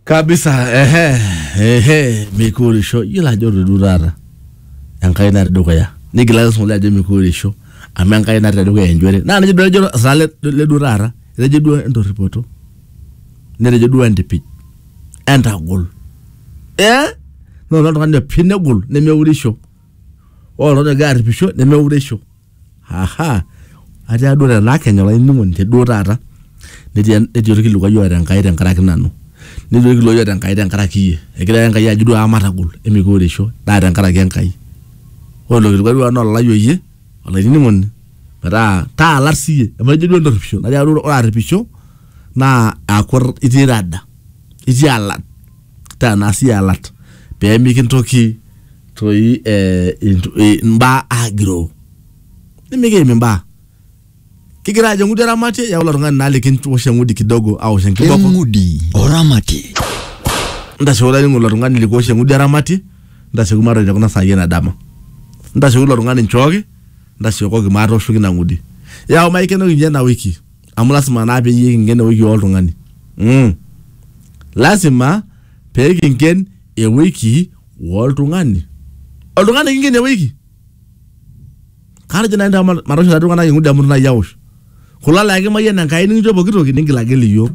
kabisa ehe ehe mikuurisho yiolo ajo todu taata enkai natii dukuya nigilaki sungula ajo mikuurisho amu enkai natii tedukuya enjore naa nejo duo ejo saa le le duo taata etejo duo entorripoto netejo duo entipij entagol eh noto oltung'ani opik negol nemeurisho ore oltung'ani ogira arripisho nemeurisho. Aha! Ataa duo tenaa kenya olainining'oni te duo taata netii netii olkilikuai oota Enkai tenkaraki nanu, netii olkilikuai oota Enkai tenkaraki iyie. Egira ake Enkai ajo duo aa matagol emikiureisho naa tenkaraki Enkai. Ore ilo kilikuai duo naa ololai oyie olainining'oni metaa taalat siyie emajo duo entorripisho natii atua ore arripisho naa aaku itii rada, itii alat. taa naa sii alat pee mikintoki toi eh, intu- eh, imbaa agiroo nimikiim imbaa kigira ajo eng'udi eramatie yau ilo tung'ani naa likinwosh eng'udi kidogo awosh enkiboko eng'udi oramatie ntashe olainingo ilo tung'ani likowosh eng'udi eramatie ntasheku matoni tekuna saai ena dama ntasheku ilo tung'ani nchooki ntashekoki maatooshoki ina ng'udi yau maikenoki ninye ena wiki amu lasima naa peyie kinken ewiki oltung'ani mm. lasima pee kinken ewiki oltung'ani oltung'ani kinken ewiki katejo nai ntae ma- matoosho laa tung'anak eng'udi amu itu nai aosh kulo laa kimayian enkai nikincho pooki toki ningilagil iyiook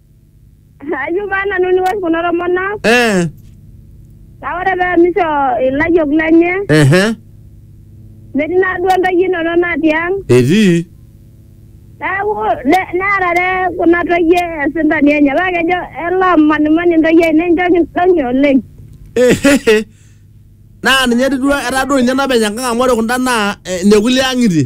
Ayieu paa nanu niwosh kulo tomonok eh, naa ore pee emisho ilayiok lenye ehe, metii naa duo ntoyie inono natii ang etii neeku ne- nearare kuna toyie esintani enye paa kejo elo amanimani ntoyie ainei nchoo kidong'i oleng. Ehehe. naa ninye etii duo etaa duo ninye napeny enkang amu ore kunda naa eh, nekulie ang'itie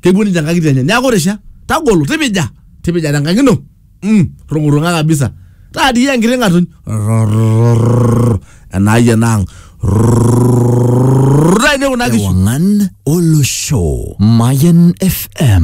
kepuo ninche nkang'itie enye neaku risha tagolo tipija tipija tenkang ino mm, rung'urung'a kabisa taadii enkiti ng'atuny Rrrr, enaai enaang Rrrr, taine kuna kishu Ewangan Olosho. Mayan FM.